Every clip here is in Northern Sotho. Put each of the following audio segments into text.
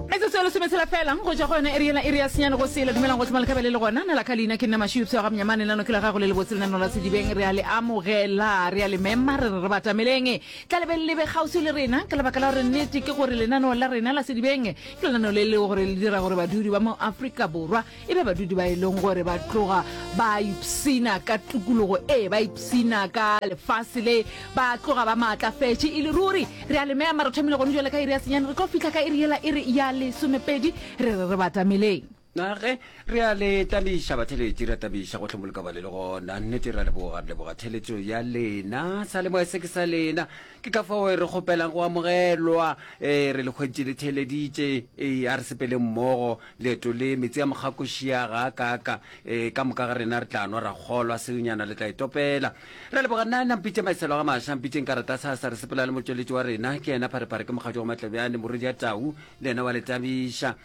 metsotso e lesometshela fela go ja go yona eri ena eri ya senyane go sela dumelang go tlhoma lekabe le le gona na la ka leina ke nna mašio pshego ga mnyamane lano ke la gago le lebotse lenano la sedibeng re a le amogela re a le mema re re re batameleng tla lebeng lebe kgauswi le rena ka lebaka la gore nnete ke gore lenano la rena la sedibeng ke lenano le le gore le dira gore badudi ba mo aforika borwa e be badudi ba e leng gore ba tloga ba ipsina ka tukologo e ba ipsina ka lefase le ba tloga ba maatlafetše e le ruri re a lemeya mara thomile gone jale ka iri ya senyane re tlo fitlha ka iri yela e re ya lesomepedi re re re batameleng nage re a le tabiša batheletši re a tabiša go hlomoloka bale le gona nnete re a leboga re leboga theletšo ya lena sa le moya se ke sa lena ke ka fao re kgopelang go amogelwa um re le kgweditše le theeleditše ee a re sepeleng mmogo Leeto le, Metsi a Mogakošia ga a kaaka. E, ka moka ga rena re tla nwa ra kgolwa, seonyana le tla e topela. Re a leboga, nna, nna mpitše maeselo ga maša, mpitšeng ka rata sa, sa re sepela le motšweletši wa rena, ke yena Pharepare, ke mokgatšo wa Matlebjane, morwedi ya tau, le yena wa le tabiša.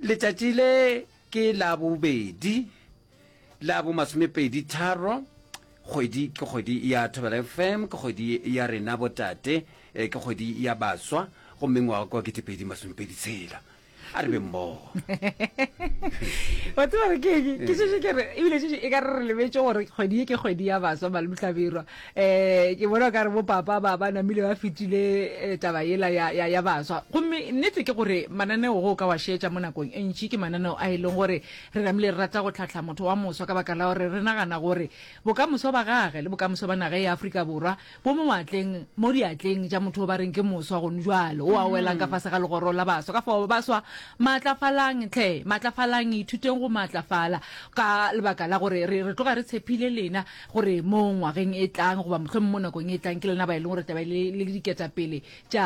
Letšatši le ke la bobedi, la bo masomepedi tharo, kgwedi ke kgwedi ya Thobela FM, ke kgwedi ya rena botate, eh, ke kgwedi ya baswa, gomme ngwaga kwa ketepedi masomepedi tshela. a re be mmogo wa tseba re keng ke sese ke re ebile sese e ka re re lebetse gore kgwedi e ke kgwedi ya baswa malomhlabirwa um eh, ke bona ka re bo papa ba ba namile ba fetile eh, taba ela ya, ya, ya baswa gomme nnete ke gore mananeo go ka wa šetša mo nakong e ntši ke mananeo a e leng gore re namile re rata go tlhatlha motho wa moswa ka baka la gore re nagana gore bokamoso ba gage le bokamoso ba naga ya afrika borwa Bo mo moatleng, mo diatleng tša motho o ba reng ke moswa gone jwalo, o a welang ka fase ga legoro la baswa. Ka fao, baswa, maatlafalang hle, maatlafalang, ithuteng go maatlafala, ka lebaka la gore re, re tloga re tshepile lena, gore mo ngwageng e tlang, goba mohlomong mo nakong e tlang, ke lena ba e leng gore taba le, le diketapele tša,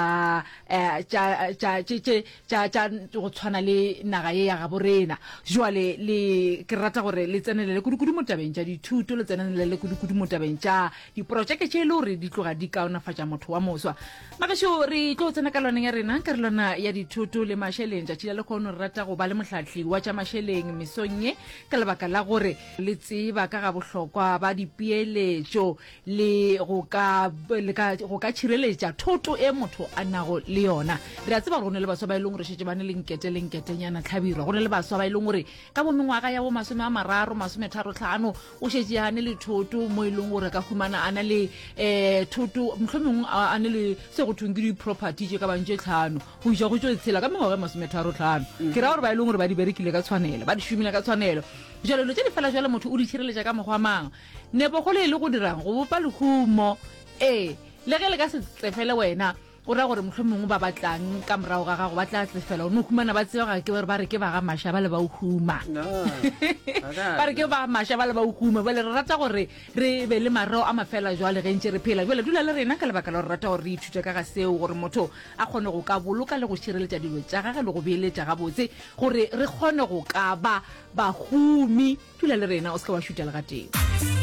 eh, tša, tša, tše, tše, tša, tša go tshwana le naga ye ya gabo rena. Jwale le, ke rata gore le tsenelele kudu-kudu mo tabeng tša dithuto, le tsenelele kudu-kudu mo tabeng tša Diporotšeke tše e le gore di tloga di kaonafatša motho wa moswa. Magešo re tlo tsena ka lwaneng ya rena ka relwana ya dithoto le mašeleng. Tšatši la lekgono re rata go ba le mohlahli wa tša mašeleng mesong ye ka lebaka la gore le tseba ka ga bohlokwa ba dipeeletšo le go ka le ka go ka tšhireletša thoto e motho a nago le yona. Re a tseba gore go ne le baswa ba e leng gore šetše ba ne le nkete le nketenyana tlhabirwa. Go ne le baswa ba e leng gore ka bo mengwaga ya bo masome a mararo masometharo tlhano o šetše a ne le thoto mo e leng gore ka humana a na le um thoto motlho mongwe a ne le se go thong ke di-property tše ka bang tše tlhano go isa go tso tshela ka mengwaga e masometharo tlhano ke ra gore ba e leng gore ba di berekile ka tshwanelo ba di šomile ka tshwanelo jalo dilo tse di fela jalo motho o di tšhireletša ka mokgwa mang nepogolo e le go dirang go bopa lehumo ee le ge le ka se tsefele wena O ra gore mohlomongwe ba ba tlang ka morago ga gago ba tla tsefela. O no humana ba tseba ga ke gore ba re ke ba ga Masha ba le ba huma. Ba re ke ba Masha ba le ba huma. Bale re rata gore re be le mareo a mafela jwale ge ntše re phela. Jwale dula le rena ka lebaka la gore rata gore re ithute ka ga seo gore motho a kgone go ka boloka le go šireletša dilo tša gage le go beeletša gabotse gore re kgone go ka ba bahumi. Dula le rena o se ke wa šutha le gatee.